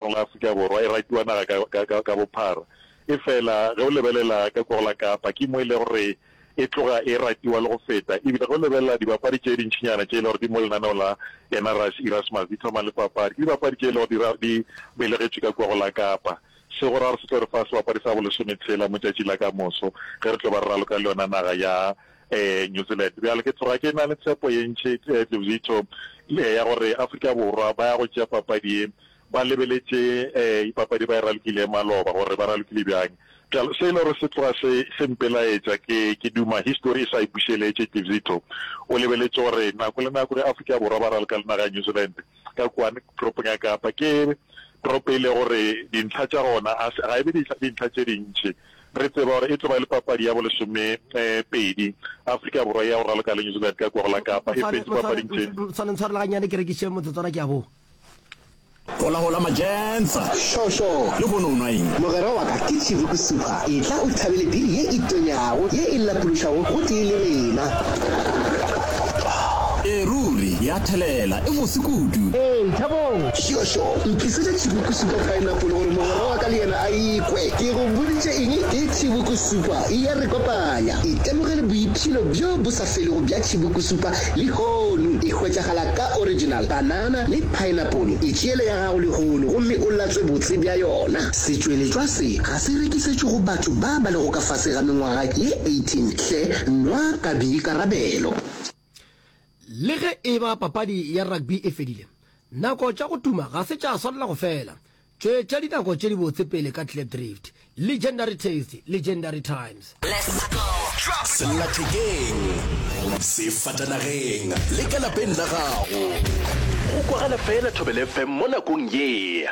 Naga ya Afrika Borwa e ratiwa naga ka, ka, ka, ka bophara. Efela ge o lebelela ka kua go la Kapa, ke mo e lego gore e tloga e ratiwa le go feta. Ebile ge o lebelela dibapadi tše dintšinyana tše e lego gore di mo lenaneo la Enarus Erasmus, di thoma le papadi, ke dibapadi tše e lego gore di, di belegetšwe ka kua go la Kapa. Se go ra gore se tlo re fa sebapadi sa bolesometshela mo tšatši la ka moso, ge re tlo ba re raloka le yona naga ya um New Zealand. Bjale ke tloga ke na le tshepo ye ntši, Dlevuzito, ya gore Afrika Borwa ba ya go tšea papadi ye. Ba lebeletše dipapadi ba e ralokile maloba gore ba ralokile bjang. Bjalo se e le gore se tloga se se mpelaetša, ke ke duma histori e sa e bušeletše. Ke Zitto o lebeletše gore nako le nako ge Afrika Borwa ba raloka le naga ya New Zealand ka kwane toropong ya Kapa, ke toropo e le gore dintlha tša gona a ga e be dintlha tše dintši. Re tseba gore e tlo ba le papadi ya bolesome pedi Afrika Borwa ya go raloka le New Zealand ka kwa go la Kapa e fetše papading tše. Tshware ntshwarele gannyane ke rekiše motsotswana ke a boa. Holahola Majensa. Šo, šo. Lehono o nwa eng? Mogwera wa ka ke Tšivuku Supa. Etla o thabele biri ye e tonyago, ye e lapološago gotee le rena. Ee, ruri, ya thelela. E bose kudu. Ee, thabong. Šo, šo. Ntlisetša Tšivuku Supa paenapole gore mogwera wa ka le yena a e kwe. Ke go boditše eng? Ke Tšivuku Supa. E ya re kopanya. Itemogele boipshino bjo bo. se lego bja tšhibukusupa lehono e hwetšagala ka original banana le paenapole. E tšeele ya gago lehono gomme o latswe botse bja yona. Setšweletšwa se ga se rekisetšwe go batho ba ba lego ka fase ga mengwaga ye 18 hle nwa ka boikarabelo. Le ge e ba papadi ya rugby e fedile, nako tša go tuma ga se tša swanela go fela. Tšwetša dinako tše dibotse pele ka Klipdrift, Legendary Taste, Legendary Times. Sellathekeng, sefatanageng le ka lapeng la gago. Go kwagala feela Thobela FM mo nakong ye.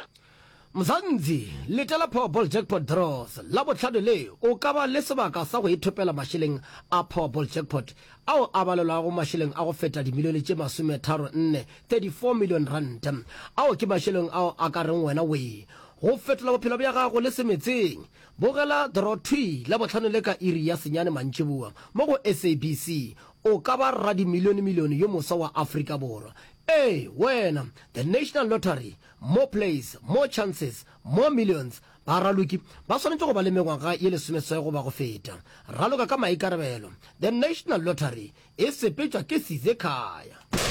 Mzanzi, letela Powerball Jackpot Draws Labohlano le, o ka ba le sebaka sa go ithopela mašeleng a Powerball Jackpot ao a balelwago mašeleng a go feta dimilione tše masometharo nne, 34 million rand. Ao ke mašeleng ao a ka reng wena we go fetola bophelo bja gago le se metseng. Bogela Dorothwi Labohlano le ka iri ya senyane mantšiboa mo go SABC, o ka ba radimilionemilione yo moswa wa Afrika Borwa. Ee, wena! The National Lottery, More plays, more chances, more millions. Ba raloki ba swanetše go ba le mengwaga ye lesomeswai goba go feta. Raloka ka maikarabelo. The National Lottery e sepetšwa ke Sizekhaya.